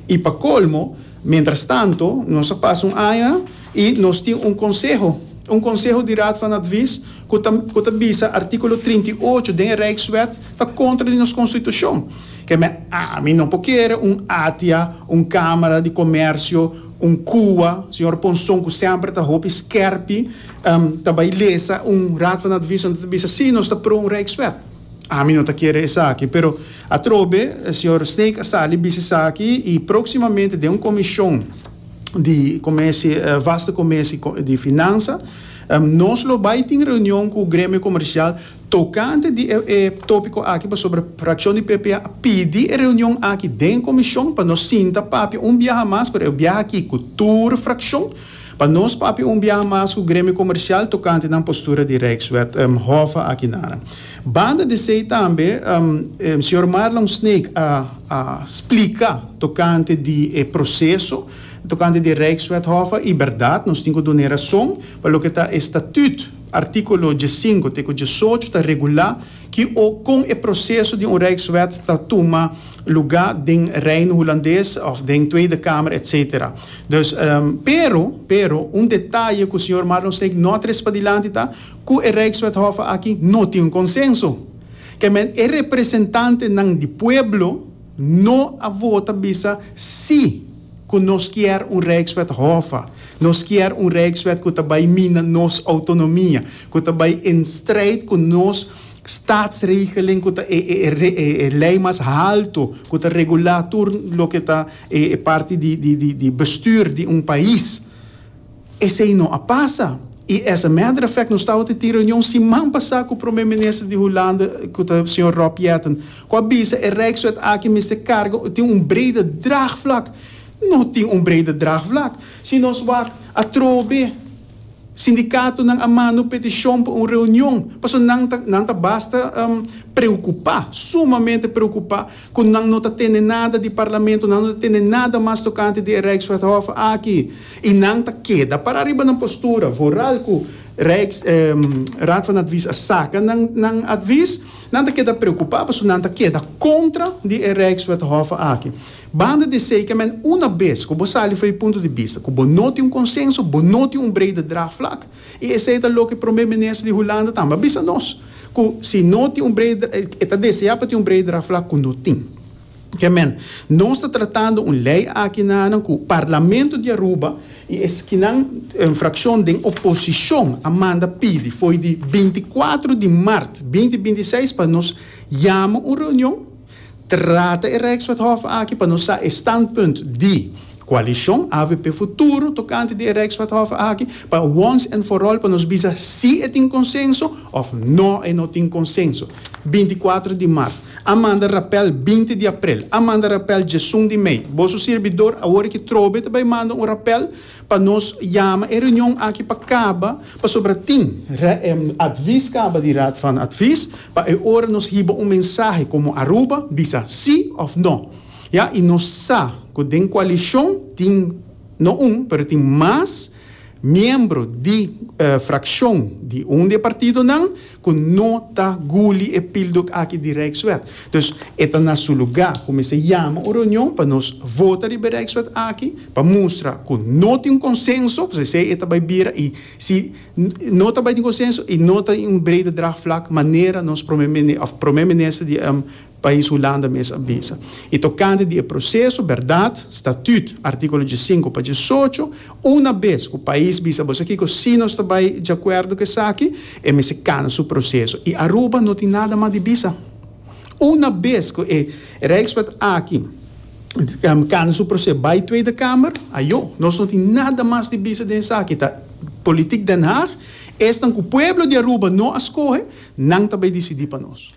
I pa colmo, mientras tanto, nos a pasa un aña i nos tin un conseho, un conseho di Raad van Advies cu ta cu ta bisa articulo trinta i ocho den e Rijkswet ta contra di nos constitucion. Keme ami no por kere un ATIA, un Camara di Comercio, un CUWA, señor Ponson cu semper ta hopi skerpi, ta bay lesa un Raad van Advies unda ta bisa si nos ta pro un Rijkswet. Ami no ta kere esaki, pero. Atrobe, señor Snake a sali bisti esaki y proximamente den un comision di comerci, vasto comerci di finanza, nos lo bay tin reunion cu gremio comercial tocante di e topico aki pasobra fraccion di PPA a pidi e reunion aki den comision pa nos sinta papia un biaha mas, pero e biaha aki cu tur fraccion, pa nos papia un biaha mas cu gremio comercial tocante nan postura di Rijkswet, Hoffe aki nan. Banda di esei tambe e señor Marlon Sneek a a splika tokante di e proseso tokante di e Rijkswet Hof a i berdad nos tin ku duna e rason pa loke ta e statüt artíkulo diesinko te ku diesocho ta regulá ki o kon e proseso di un Rijkswet ta tuma lugá den Reino Hulandes òf den Tweede Kamer etsetera. Dus pero pero un detaye ku señor Marlon Sneek no a tres padilanti ta Ku e Rijkswethofe aki no tin un konsenso. Kèmen e representantenan di pueblo no a vota bisa sí ku nos kier un Rijkswethofe, nos kier un Rijkswet ku ta bai mina nos outonomia, ku ta bai in strijd ku nos Statsregeling ku ta e lei mas haltu ku ta regulá tur loke ta e parti di bestuur di un pais. Esei no a pasa. I as a matter of fact nos tabatin tin reunion siman pasá ku Prome Minister di Hulanda ku ta señor Rob Jetten ku a bisa e Rijkswet aki mester karga tin un brede draagvlak. No tin un brede draagvlak. Si nos wak atrobe sindikatonan a manda un petishon pa un reunion pasobra nan ta nan ta basta preokupá, sumamente preokupá. cu nan no ta tene nada di Parlamento, nan no ta tene nada mas tocante di e Rijkswethof aki, y nan ta keda para ariba nan postura, vooral cu Rijks, eh, Raad van Advies a saca nan, nan advies, nan ta keda preocupa, pasobra nan ta keda contra di e Rijkswethof aki. Banda di esey, ke men una bes cu bo sali for e punto di bista cu bo no tin un consenso, bo no tin un brede draagvlak, I esei ta loke Prome Minister di Hulanda tambe a bisa nos, ku si no tin un brede, e ta deseá pa tin un brede draftflag ku no tin. Ke men, nos ta tratando un lei aki nanan ku Parlamento di Aruba i eskinan frakshon den oposishon a manda pidi fo'i di binti kuatru di mart binti binti seis pa nos yama un reunion, Trata e Rijkswethof aki pa nos sa e standpunt di Coalicion avp Futuro tocante di e Rijkswethof aki pa once and for all pa nos bisa si e tin consenso of no e no tin consenso. Binti cuatro di Mart a manda rappel binti di April a manda rappel djesun di Mei. Boso sirbidor awor aki trobe ta bay manda un rappel. Pa nos yama e reunion aki pa kaba pasobra tin advis kaba di Raad van Advies pa e ora nos hiba un mensahe komo Aruba bisa si òf no ya i nos sa ku den koalishon tin no un pero tin mas miembro di frakshon di un di e partidonan ku no ta guli e pildok aki di Rijkswet. Dus e ta na su lugá ku mester yama un reunion pa nos vota riba e Rijkswet aki pa mustra ku no tin un konsenso, pues esei e ta bai bira i si no ta bai tin konsenso i no ta in un brede draagvlak manera nos Prome, òf Prome Minister di Pais Hulanda mes a bisa. I tokante di e proseso, bèrdat, statüt, artíkulo diesinko pa diesocho, una bes ku pais bisa boso kiko si nos ta bai diakuerdo ku esaki, e mester kana su proseso. I Aruba no tin nada mas di bisa. Una bes ku e Rijkswet aki kana su proseso bai Tweede Kamer, ayo, nos no tin nada mas di bisa den esaki. Ta politik Den Haag, esnan ku pueblo di Aruba no a skohe, nan ta bai disidí pa nos.